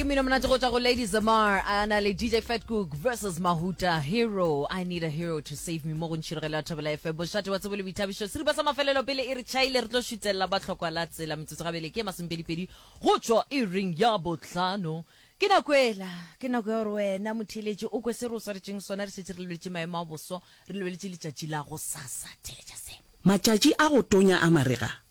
ke mmino monate go tswa go lady zamar a na le dj fatcook versus mahuta hero i need a hero to save me mo go ntšhirogelo ya thobela fm bošate wa tsebo le boithabišo seripa sa mafelelo pele e re chaile re tlo šutelela ba tlhokwa la tsela metsotso gabele ke masomepedipedi go tswa e ring ya botlhano ke nako ela ke nako ya gore wena motheletše o kwe se re o swaretšeng sona re šetse re lebeletše maemo a boso re lebeletše letšatši la go sasa theletša se Matšatši a go tonya a marega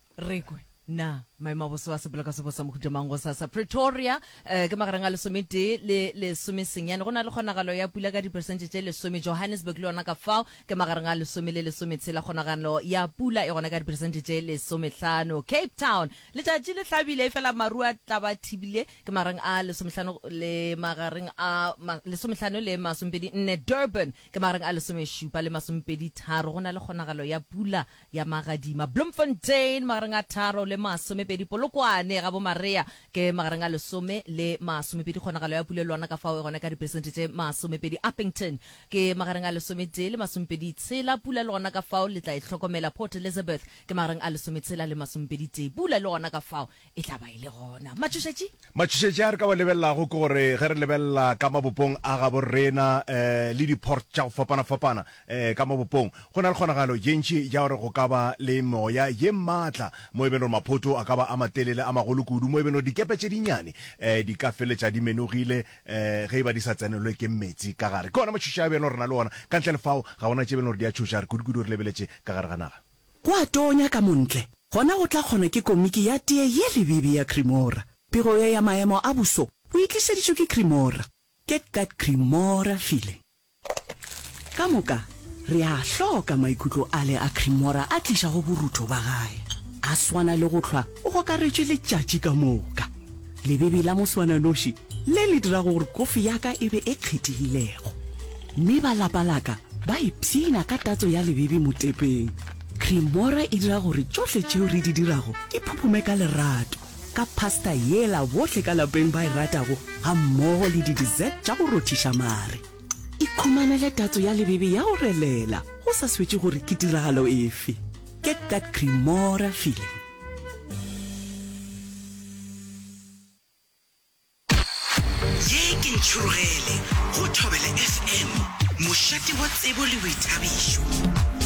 Re kwe na maemo a boso a sepolaka se bosa mohuta mang gosasa. Pretoria, eh, ke magareng a lesometee le lesomesenyane. Go na le kgonagalo ya pula ka diperesente tše lesome. Johannesburg le yona ka fao ke magareng a lesome le lesometshela. Kgonagalo ya pula e gona ka diperesente tše lesomehlano. Cape Town, letšatši le hlabile efela maru a tla ba thibile. Ke magareng a lesomehlano le magareng a ma, lesomehlano le masomepedi nne. Durban, ke magareng a lesomešupa le masomepedi tharo. Go na le kgonagalo ya pula ya magadima Bloemfontein magareng a tharo le masomepedi Polokwane ga bomarea ke magareng a lesome le masomepedi Kgonagalo ya pula e lwana ka fao e gona ka diperesente tše masomepedi Upington ke magareng a lesometee le masomepedi tshela Pula e lwana ka fao le tla e hlokomela Port Elizabeth ke magareng a lesometshela le masomepedi tee Pula e lwana ka fao e tla ba e le gona. Matšhošetši? Matšhošetši a re ka wa lebelelago ke gore ge re lebelela ka mabopong a gabo rena um le diport tša go fapana-fapana um ka mabopong, go na le kgonagalo ye ntši ya gore go ka ba le moya ye maatla mo e beng gore maphoto a ka ba a matelele, a magolo kudu, mo e beng gore dikepe tše dinnyane um di ka feletša di menogile um ge e ba di sa tsenelwe ke meetse ka gare. Ke ona matšhošetši a e beng gore re na le ona. Ka ntle le fao, ga go na tše e beng gore di a tšhoša, re kudu-kudu re lebeletše ka gare ga naga. Go a tonya ka montle, gona go tla kgonwa ke komiki ya tee ye lebibi ya Cremora. Pego ye ya maemo a boso o e tlišeditšwe ke Cremora. Get that Cremora feeling. Ka moka, re a a hloka maikutlo ale a Cremora a tlišago borutho ba gae. A swana le go hlwa o gokaretšwe letšatši ka moka. Lebebi la moswananoši le le dirago gore kofi ya ka e be e kgethegilego, mme ba lapa la ka ba ipshina ka tatso ya lebebi motepeng. Cremora e dira gore tšohle tšeo re di dirago di phuphume ka lerato, ka pasta yela bohle ka lapeng ba e ratago gammogo le di-dessert tša go rothiša mare. Ikhumanele tatso ya lebebi ya go relela go sa swetše gore ke tiragalo efe. Get that Cremora feeling! Ye ke Ntšhurugele go Thobela FM, mošate wa tsebo le boithabišo.